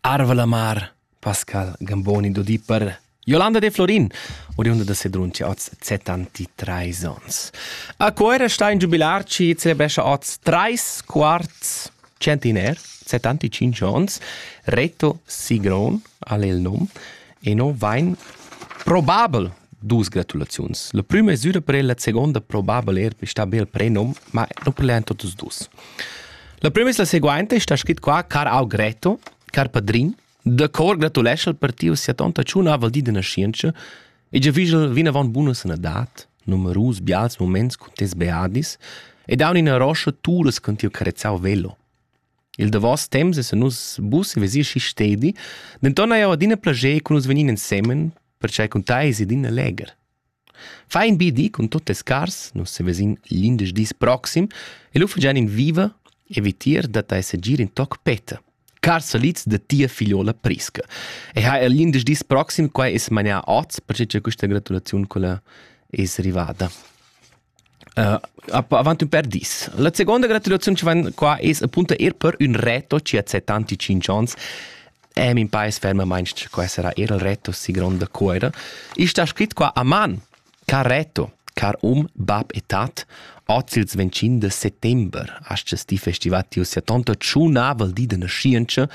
Arva la mar, Pascal Gamboni d'Odi per Jolanda De Florin, oriunda da Sedrunci, oz 73 ons. A Cuoira sta in giubilar ci celebrescia oz trais quarts centiner, 75 ons, Reto Sigron, al il num, Eno vain probabel dus gratulaziuns. La prüma mesüra per el, la seguonda probabel eir per sta be il prenom, ma nu per lean tuots dus. La prima es la seguainta, sta scrit qua, Car Augreto, car padrin, da cor gratulescha al partiu sia tonta ciuna val di de nascienza e già vigel vinavant buna sanadad, numerus bials moments con tes beadis e daun ina roscia turas con tiu carezzau velo. Il davos temps essan nus bus e vesir schi stedi, denton hai jeu adina plascher cun nus vegnir ensemen, pertgei cun tei eis ed in legher. Fai in bi di cun tut tes cars, nus sevesin l'indesch dis proxim e lu fagian in viva e vitier dat ei segir in toc petta. Cars salids da tia figliola Prisca. E ha er l'indesch dis proxim quai es manià oz, perché che questa gratulaziun quella es arrivada. avant ün pêr dis. La segonda gratulaziun chi vain qua es appunto eir per ün reto chi hat set tanti tschinch ans e min pais fermamaing che qua sarà eir il reto si gronda cuoira. I sta scrit qua a man, car reto, car um, bab e tat, oz ils 25 de settember, astes di festivat tiu sia tonta tschunavel di de nascientscha,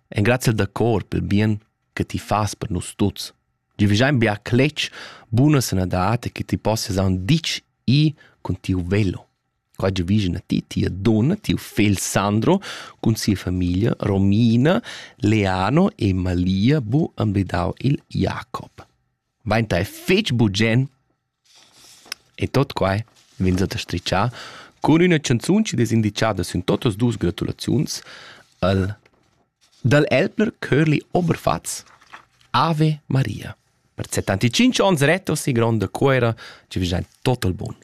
en grazie da cor pel bien che ti fas per nus tuts. Gi vigiain bia cletg, buna sanadad che ti possias aun ditg i cun tiu velo. Qua gi vigina ti, tia donna, tiu fegl Sandro, cun sia famiglia Romina, Leano e Malia bu ambedau il Jacob. Vainta è fetg bugen E tot quai vainsa da stritchar cun üna chanzun chi'd es indichada sün totas duos gratulaziuns al dal Elbner Chörli Oberfatz Ave Maria per 75 ons rettos e gronda cuoira chi vegnan tot al bun.